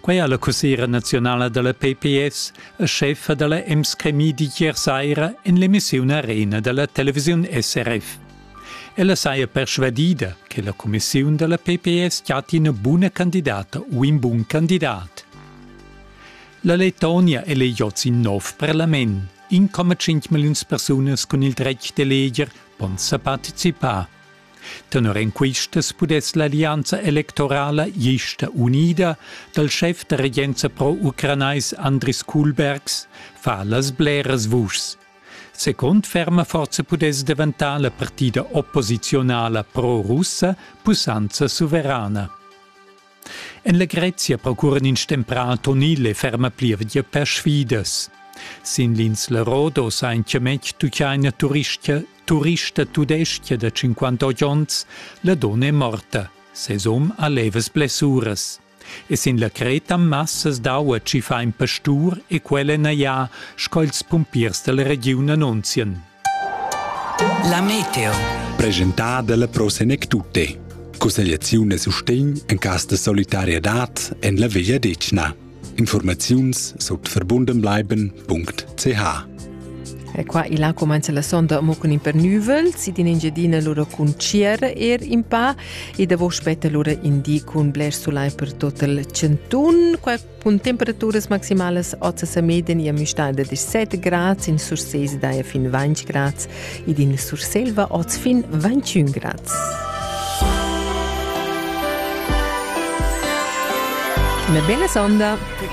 Quei ha la cussera nazionala dalla PPS e chefa dalla Emskremi d'ier saira en l'emissiun Arena dalla televisiun SRF. Ella saja persvadida che la commissiun dalla PPS chatti ina buna candidata u in bun candidat. La Letonia è l'EJ in nov parlament. 1,5 milliuns persunas cun il dretg d'eleger pon sa participar. Tenor en quistas pudess l'allianza electorala gista unida dal schef da regenza pro-ucranais Andris Kuhlbergs fa las bleras vuschs. Second ferma forza pudess daventar la partida opposiziunala pro-russa pussanza suverana. En legrezia procuran ins stemprà Antonil e ferma plievgia per sfidas. Sin l'insla Rodos ha in chiametg tuchaina turistcha, turista tudescha da 58 onns, la donna è morta, ses um ha levas blessuras. E sin la Creta massas d'aua ci fa in pastur e quella naia, sco ils pumpiers dalla regiun annunzian. La meteo. Presentada dalla Pro Senec Tutte. Cussegliaziun e sustegn en cas de solidarietad en la Veglia Decna. Informaziuns sut verbundenbleiben.ch E qua il là comenza la sonda mo cun in per nuvel, si din Engiadina lura cun Cier er in pa e da vo spetta lura indi cun bler sulai per tot il centun. Qua Cun temperaturas maximalas oz sa meden ia müstada da 17 grads in Sursese daia fin 20 grads ed in Surselva oz fin 21 grads. Una bella sonda! Per